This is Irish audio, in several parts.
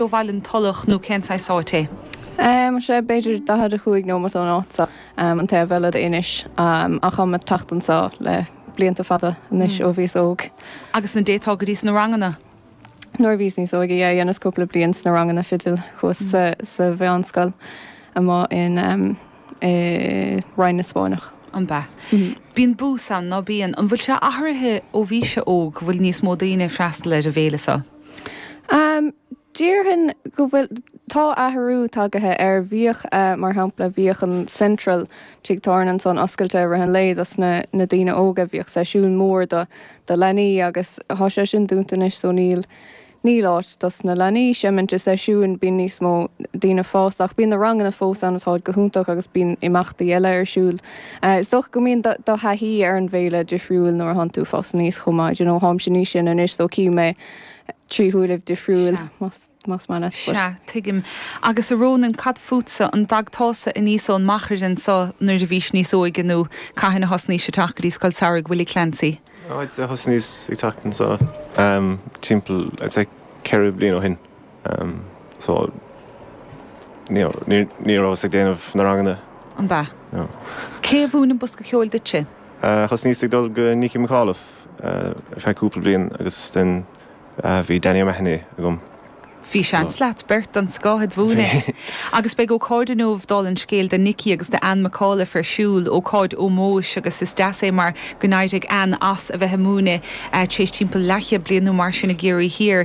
do bhaile, An Tulach nó cén saghas áit é. Tá sé b'fhéidir 45 nóimeat ón áit seo, an taobh eile d'Inis, ach táim ag teacht anso le blianta fada anois ó bhíos óg. Agus an dtéiteása go dtí na ranganna? Nuair a bhíos níos óige, yeah, dheineas cúpla bliain sna ranganna fidil, chuas sa mheánscoil amuigh in, i Rinn na Spáinneach. An b'ea? Bíonn bús ann, ná bíonn? An bhfuil sé athraithe ó bhís-se óg go bhfuil níos mó daoine ag freastal ar an bhféile seo? Déarfainn go bhfuil. Tá athrú tagaithe ar bhíodh mar shampla bhíodh an Central tigh tábhairne ansan oscailte i rith an lae dos na na daoine óga bhíodh seisiún mór do do leanaí agus thá sé sin dúnta anois so níl níl áit dos na leanaí seimint i seisiúin bíonn níos mó daoine fásta ach bíonn na ranganna fós ann agus táid go hiontach agus bíonn imeachtaí eile ar siúl Is dócha go mbíonn do thaithí ar an bhféile difriúil nuair a thánn tú fásta aníos chomh maith, you know, tháimse níos sine anois so cím é trí shúilibh difriúil más maith leat. Sea, tuigim. Agus a Rónan, cad fútsa, an dtagtása aníos ón Máigh anso nuair a bhís níos óige nó cathain a thosnaís ag teacht go dtí Scoil Samhraidh Willie Clancy? I'd say thosnaíos ag teacht anseo timpeall I'd say cheithre bliain ó shin. so ní rabhas ag déanamh na ranganna. An b'ea? No. Cé a mhúin an bosca ceoil duitse? Thosnaíos ag dul go Nicky McAuliffe ar feadh cúpla bliain agus then bhí Danny O'Mahony agam. Bhí seans leat beirt den scoth a'd mhúineadh. Agus beidh ócáid inniu dála an scéil do Nicky agus do Anne McAuliffe ar siúl, ócáid ómóis agus is deas é mar gur éirigh Anne as a bheith ag múineadh tar éis timpeall leathchéad bliain nó mar sin i gCiarraí Thiar.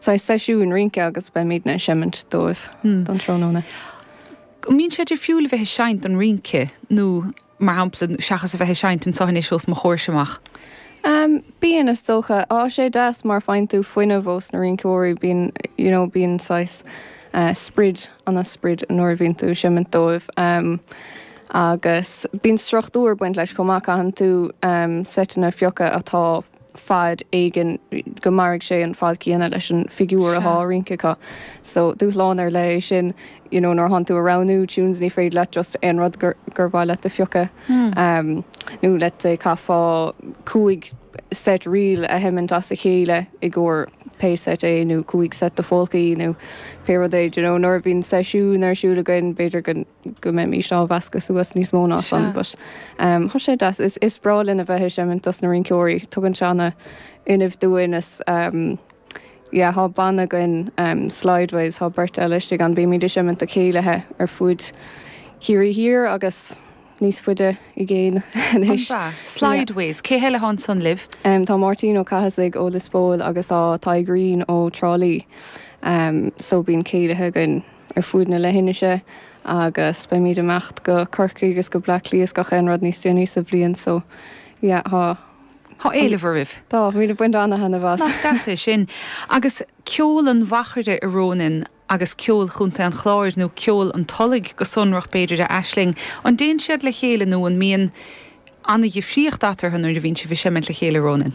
saghas seisiúin rince agus beimidne ag seimint dóibh um thráthnóna. An mbíonn sé difriúil a bheith ag seinnt don rince nó mar shampla seachas a bheith ag seinnt ansan thuas os mo chomhairse amach? Bíonn is dócha. Á sé deas mar faigheann tú fuinneamh ós na rinceoirí bíonn you know bíonn saghas sprid ana sprid nuair a bhíonn tú ag seimint dóibh agus bíonn struchtúr ag baint leis chomh maith caitheann tú seiteanna a phiocadh atá fad éigin go mairfidh sé an fad céanna leis an bhfigiúr atá á rince acu. So, dúshlán ar leith é sin you know nuair a thánn tú ag roghnú tunes ní féidir leat just aon rud gur gur mhaith leat a phiocadh em nó let's say chaithfeá cúig set ríl a sheimint as a chéile i gcomhair pé set é nó cúig set de pholcaí nó pé rud é d'you know nuair a bhíonn seisiún ar siúl againn b'fhéidir go go mbeimís á mheascadh suas níos mó ná san but tá sé deas. Is is breá linn a bheith ag seimint dos na rinceoirí. Tugann sé ana fhuinneamh dúinn is yeah thá banna againn Slideways thá beirt eile istigh ann bímid ag seimint ag céilithe ar fuaid Chiarraí Thiar agus níos fuide i gcéin anois. An b'ea? Slideways. Cé eile thá ansan libh? Tá Máirtín Ó Cathasaigh ó Lios Póil agus tá Tadhg Green ó Trá Lí so bíonn céilithe againn. ar fuaid na leithinise agus beimid ag imeacht go Corcaigh agus go Bleá Cliath is gach aon rud níos déanaí sa bhliain so yeah thá Thá éileamh oraibh. Tá, bímid ag baint ana-thaitneamh as. Nach deas é sin. Agus ceol an Mhachaire a Rónáin agus ceol Chontae an Chláir, nó ceol an Tulaigh go sonrach b'fhéidir a Aisling, an dtéann siad le chéile nó an mbíonn ana-dhifríocht eatarthu nuair a bhíonn sibh ag seimint le chéile a Rónáin?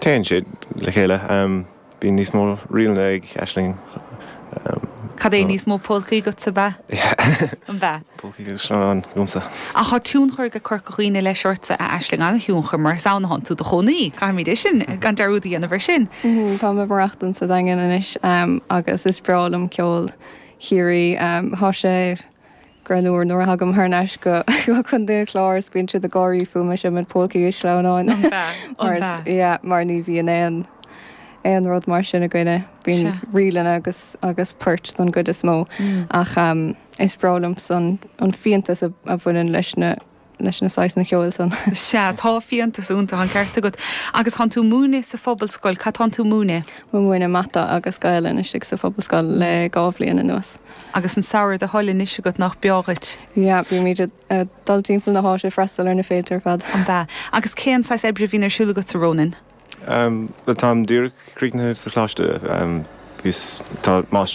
Téann siad le chéile. Bíonn níos mó ríleanna ag Aisling. Cad é níos mó polcaí agatsa, b'ea? An b'ea? Polcaí agus sleamhnáin agamsa. Ach tá tionchar ag Corca Dhuibhne leis ortsa, a Aisling, an-thionchar, mar is ann atá tú i do chónaí. Caithfimid é sin, gan dearúd a dhéanamh air sin. Táim ag maireachtaint sa Daingean anois agus is breá liom ceol Chiarraí. Tá sé. Greannmhar nuair a thagaim thar n-ais go Contae an Chláir is bíonn siad ag gáirí fúm as an méid polcaí is sleamhnáin. An b'ea? An b'ea? Yeah, mar ní bhíonn aon aon rud mar sin againne. Bíonn Sea. ríleanna agus agus poirt don gcuid is mó. Ach is breá liomsa an an fiantas a a bhaineann leis na leis na saghasanna ceoil san. Sea, tá fiántas iontu, an ceart agat. Agus thánn tú múineadh sa phobalscoil, cad thánn tú múineadh? Mu múineadh Mata agus Gaelainn istigh sa phobalscoil le dhá bhliain anuas. Agus an samhradh ar do thoil anois agat nach beo dhuit? Yeah, bímid a' dul timpeall na háite a' freastal ar na féilte ar fad. An b'ea? Agus cén saghas oibre a bhíonn ar siúl agatsa a Rónáin? Táim díreach críochnaithe sa Choláiste, bhíos, tá Máistir.